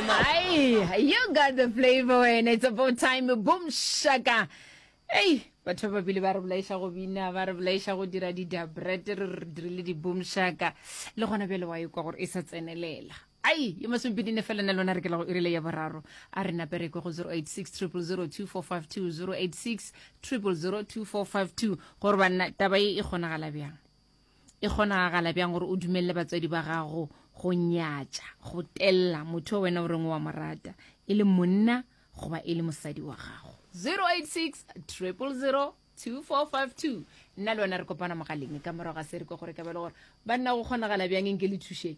Aye, you got the flavor when it's about time boom shaka ei batho ba babile ba re bolaiša go bina ba re bolaiša go dira di-dabret re re dirile di-boom shaka le gona bjale wa ekwa gore e sa tsenelela ai yo masomepedine fela na lona re kela go e rile ya boraro a re napereko go 086 0002452 086 0002452 gore banna taba e e kgonagala bjang e kgonagala bjang gore o dumelele batswadi ba gago go nyatša go tella motho o wena o reng wa mo rata e le monna goba e le mosadi wa gago 086 000 2452 nna le wena re kopana mogaleng ka morago ga se re ko gore ka belo gore banna go kgonagala bjang e nke le thušeng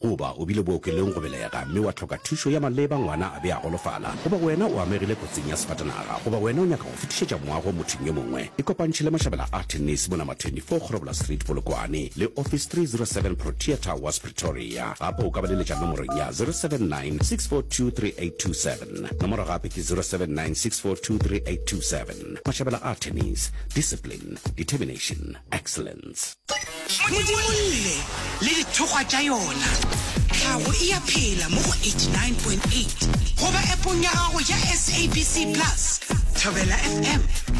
Goba o bile bookelong go belega mme wa hloka thušo ya maleba, ngwana a be a golofala, goba wena o amegile kotsing ya sefatanaga, goba wena o nyaka go fetišetša moago mothong yo mongwe, ikopantšhe le mašabela a thenese mo Number 24 Kgorobola Street, Polokwane, le Office 307 Protea Towers, Pretoria. Gape o ka ba leletša nomorong ya 079 642 3827. Nomoro gape ke 079 642 3827. Mašabela a thenese, Discipline, Determination, Excellence. modimolle le dithokgwa tša yona tlhago e ya phela mo go 89.8 goba epong ya gago ya sabc plus thobela fm